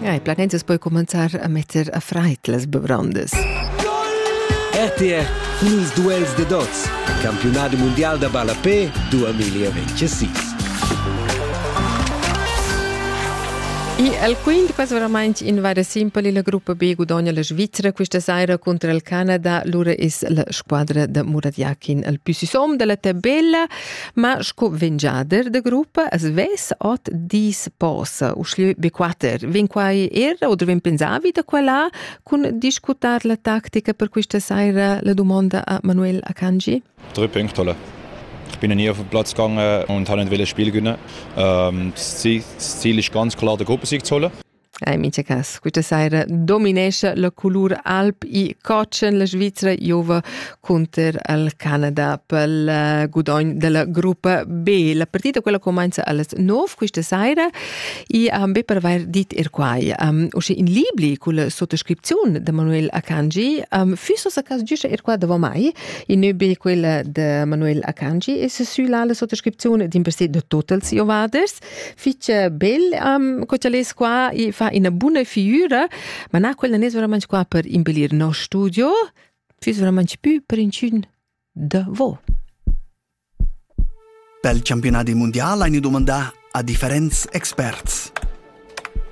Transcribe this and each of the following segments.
Ja, ich plugge jetzt poi commenzar a metter a freit las bebrandes. RTR Nus duels de dots. Campionat mondial da ballapé 2026. E al quint quas verament in vara simpel la gruppa B gudogna la Svizzera questa saira contro il Canada, lura es la squadra da Murat Yakin al più sisom della tabella. Ma sco vengiader de gruppa as ves ot dis posa usclü be quater. Vin quai era oder vin pensavi da quella cun discutar la tactica per questa saira la domanda a Manuel Akanji? Tre punctole. Ich bin nie auf dem Platz gegangen und habe nicht wollen Spiel gewinnen. Ähm, das Ziel ist ganz klar, der Gruppe zu holen. in mincha cas quista saira dominescha la culur alb i cotschen la Svizra giova cunter al Canada pel eh, gudogn della gruppa B. La partita quella comincia alles 9 quista saira e am be per vair dit er quai. Um, usche in libri culla sottoscripziun de Manuel Akanji, um, füsso sa cas giusce er qua davo mai, in neu be quella de Manuel Akanji e se sü la sottoscripzione din per se de Totals Iovaders. fitg bel um, co lez qua e fa ina buna figura, ma na quella ne veramente qua per impelir no studio, fiss veramente più per inchün da vo. Pel campionati mondial eine domanda a differents experts.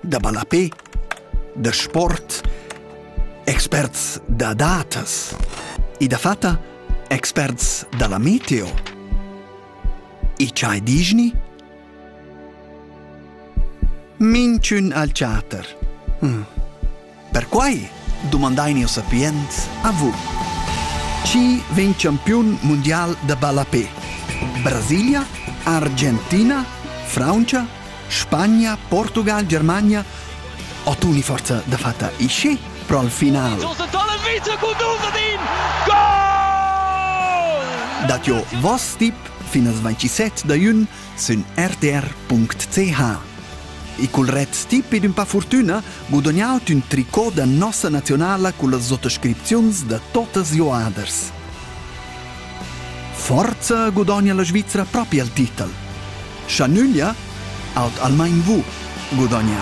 Da ballapé, da sport, experts da datas e da fatta experts dalla meteo. E ch'ei digni? Minchün al chater. Hm. Perquai dumandain io sapients a vous. Chi vegn campiun mundial da ballapé? Brasilia, Argentina, Francia Spagna, Portugal, Germania o tuni forza da fatta e schi pro al final. Josef Tollevice con Duvadin! Goal! Dat jo vos tip fin as 27 da jun sün rtr.ch. E col ret stip ed un pa fortüna gudognat ün tricot da nossa nazionala con las sottoscripziuns da totas joaders. Forza gudogna la Svizzera propi al titel. Scha nüglia, aut almain vous gudogna.